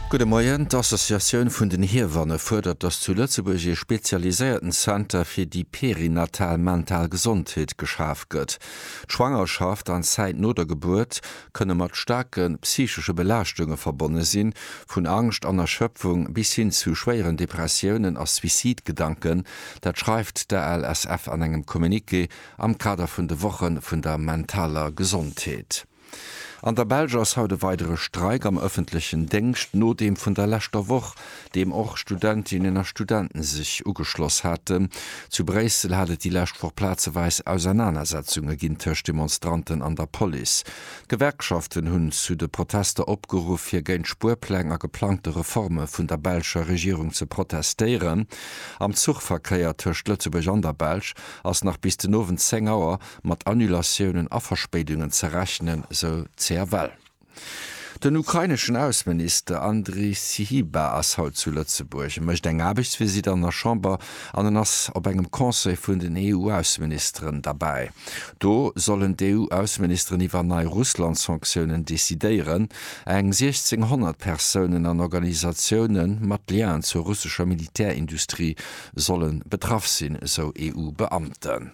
Gudde Moien, d'Associatioun vun den Hiewanne fuerdert, datt zu Lëtzebuerg ee spezialiséierten Zenter fir déi perinatal mental Gesondheet geschaf gëtt. D'Schwangerschaft an d'Zäit no der Gebuert kënne mat staarke psychesche Belaaschtunge verbonne sinn, vun Angscht an Erschöpfung bis hin zu schwéieren Depressiounen a Suicidgedanken. Dat schreift d'ALSF an engem Communiqué am Kader vun de Woche vun der mentaler Gesondheet. An der Belsch ass haut e weidere Streik am ëffentlechen Déngscht no deem vun der leschter Woch, deem och Studentinnen a Studenten sech ugeschloss haten. Zu Bréissel hat et déi lescht Woch plazeweis Ausernanersetzunge ginn tëscht Demonstranten an der Police. D'Gewerkschaften hunn zu de Protester opgeruff fir géint Spuerpläng a geplangte Reforme vun der belscher Regierung ze protestéieren. Am Zuchverkéier tëscht Lëtzebuerg an der Belsch ass nach bis den Owend 10 Auer mat Annulatiounen a Verspéidungen ze rechnen, sou d'CFL. Den ukraineschen Ausseminister Andrij Syhiba ass haut zu Lëtzebuerg. E mécht eng Aarbechtsvisitt an der Chamber an en ass op engem Conseil vun den EU-Ausseministeren derbäi. Do sollen d'EU-Ausseministeren iwwer nei Russland-Sanktiounen decidéieren. Eng 1.600 Persounen an Organisatioune mat Liaen zur russescher Militärindustrie solle betraff sinn, sou EU-Beamten.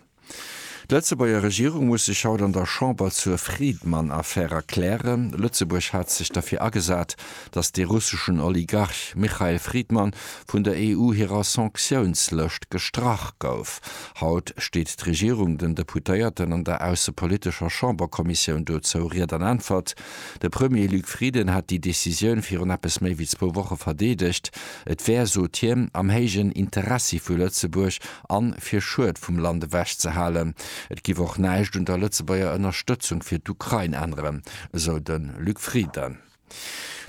D'Lëtzebuerger Regierung muss sech haut an der Chamber zur Friedmann-Affär erklären. Lëtzebuerg hat sech derfir agesat, datt de russeschen Oligarch Michael Friedmann vun der EU hirer Sanktiounslëscht gestrach gouf. Haut steet d'Regierung den Deputéierten an der aussepolitescher Chamberkommissioun dozou Ried an Äntwert. De Premier Luc Frieden hat déi Decisioun virun eppes méi wéi zwou Woche verdeedegt. Et wär, sot hien, am héijen Interessi vu Lëtzebuerg a fir Schued vum Land ewech ze halen. Et giff och näischt un der Lëtzebuerger Ënnerstëtzung fir d'Ukrain änneren, esou de Luc Frieden.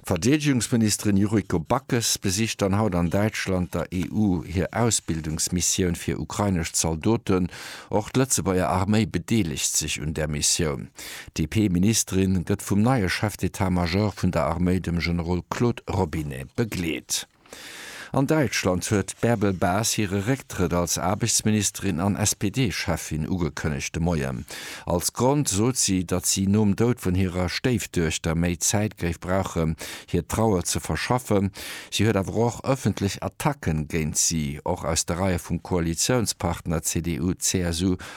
D'Verdeedegungsministerin Yuriko Backes besicht dann haut an Däitschland der EU hir Ausbildungsmissioun fir ukrainesch Zaldoten. Och d'Lëtzebuerger Arméi bedeelegt sech un där Missioun. D'DP-Ministerin gëtt vum neie Chef d'Etat-Major vun der Arméi, dem Generol Claude Robinet, begleet. An Däitschland huet d'Bärbel Bas hire Récktrëtt als Aarbechtsministerin an SPD-Cheffin ugekënnegt de Moien. Als Grond sot si, datt si nom Doud vun hirer Stéifduechter méi Zäit géif brauchen, hir Trauer ze verschaffen. Si huet awer och ëffentlech Attacken géint si, och aus de Reie vum Koalitiounspartner CDU-CSU,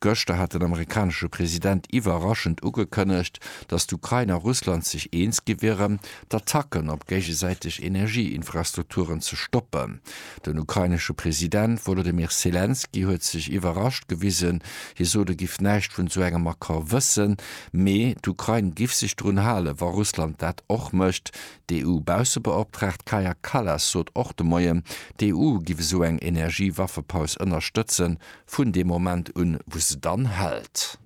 Gëschter hat den amerikanesche President iwwerraschend ugekënnegt, datt d'Ukrain a Russland sech eens gi wieren, d'Attacken op géigesäiteg Energieinfrastrukturen ze stoppen. Den ukrainesche President Wolodymyr Selenskyj huet sech iwwerrascht gewisen. Hie sot, e giff näischt vun esou engem Accord wëssen, mee d'Ukrain giff sech drun halen, wa Russland dat och mécht. D'EU-Baussebeoptraagt Kaja Kallas sot och de Moien, d'EU giff esou eng Energiewaffepaus ënnerstëtzen, Vun deem Moment un, wou se dann hält.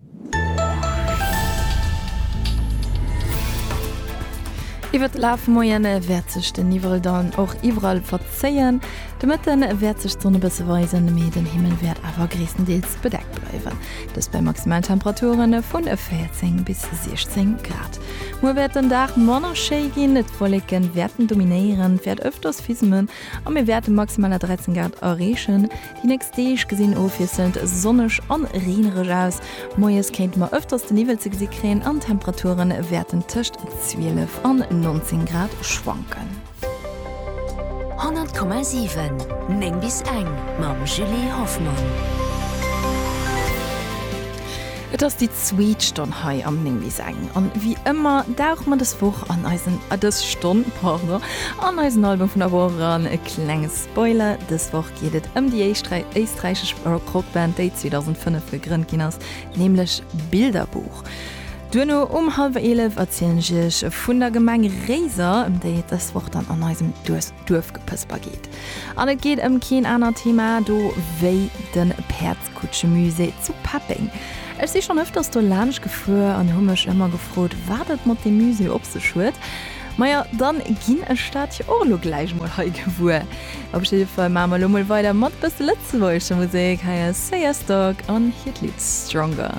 Iwwer de Laf vum Moien wäert sech den Niwwel dann och iwwerall verzéien. De Mëtte wäert sech d'Sonn e bësse weisen, mee den Himmel wäert awer gréisstendeels bedeckt bleiwen. Dëst bei Maximaltemperature vu 14 bis 16 Grad. Muer wäert den Dag manner schéi ginn, d'Wolleke wäerten dominéieren, et wäert ëfters fisselen a mir wäerte maximal 13 Grad erreechen. Déi nächst Deeg gesinn ofwiesselnd sonneg an reenereg aus. Moies kéinte mer ëfters de Niwwel ze gesi kréien an d'Temperature wäerten tëscht 12 an 19 Grad schwanken. 100,7 9 bis eng mam Julie Hoffmann. Et ass déi zweet Stonn hei am 9 bis eng an ewéi ëmmer dauche mer dës Woch an eisen, dës Stonn, pardon, an eisen Album vun der Woch eran. E klenges. Spoiler, Dës Woch geet et ëm déi éischt éisträichesch Rockband, déi 2005 gegrënnt ginn ass, nämlech Bilderbuch. Duerno um hallwer 11 erzielen ech iech vun der Gemeng Réiser, ëm déi et dës Woch dann an eisem Duerfgepësper geet. An et geet ëm keen aner Thema do wéi de Päerd. Kutschemusée zu Peppeng. Ech si schonn ëfters do laanscht gefuer an hu mech ëmmer gefrot, wat et mat deem Musée op sech huet. Maja, dann ginn ech dat jo och elo gläich mol hei gewuer. Op jidde Fall maache mer elo mol weider mat e bësse lëtzebuergescher Musek. Hei ass Seyerstock an hiert Lidd Stronger.